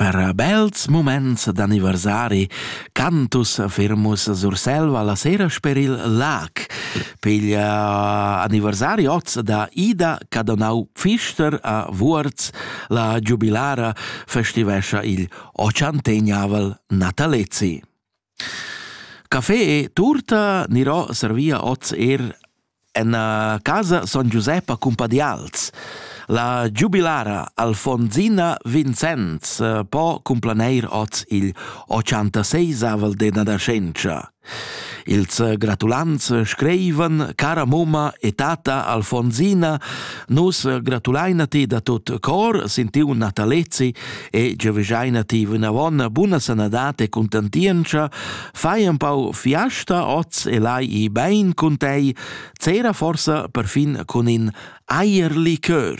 Per bels muments d'anniversari cantus firmus Surselva la sera sper il lac. Piglia anniversari oz da Ida Cadonau Pfister a Vuorz. La giubilara festivescha il ochantegnavel natalezi. Café e tuorta gnirò servia hoz eir in casa Son Giusep a Cumpadials. La giubilara Alfonsina Vinzens po cumplaneir hoz il ochantaseisavel de Nadascentscha. Ils gratulants screivan Cara momma e tata Alfonsina, nus gratulaina ti da tut cor, sin tiu natalezi e gioveschaina ti vinavon buna sanadad e contentientscha, fai un pau fiasta oz e lai i bein cun tei, cera forsa perfin cun in eierlikör.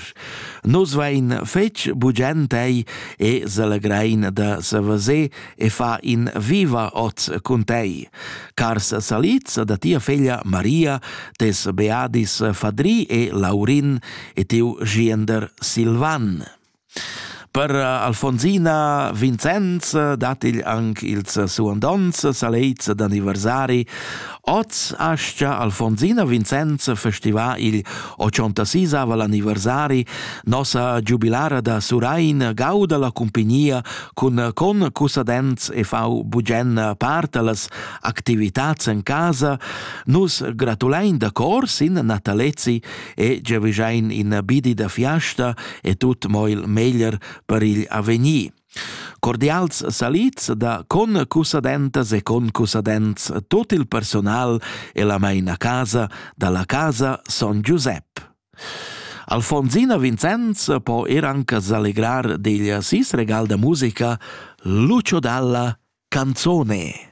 Nus vein fetg bugent tei e selegrein da savasé e fa in viva oz cun tei. Cars saliz da tia feglia Maria, tes beadis Fadri e Laurin e tiu giender Silvan. Per eh, Alfonsina Vincenz eh, dat igl anc ils suandonts saleits d'anniversari. Oz ascia Alfonsina Vincenz festiva il 86 anniversari nossa giubilara da Surain gauda la cumpignia cun con cussadenz e fau bugen part allas activitats en casa. Nus gratulein da cor sin Natalezi e giavischein in bidi da fiasta e tut mo il meglier per igl avegnir. Cordials salits da con cusadentas e con cusadents tot il personal e la meina casa dalla casa Son Giuseppe. Alfonsina Vincenz po er anche s'allegrar degli sis regal da musica Lucio Dalla Canzone.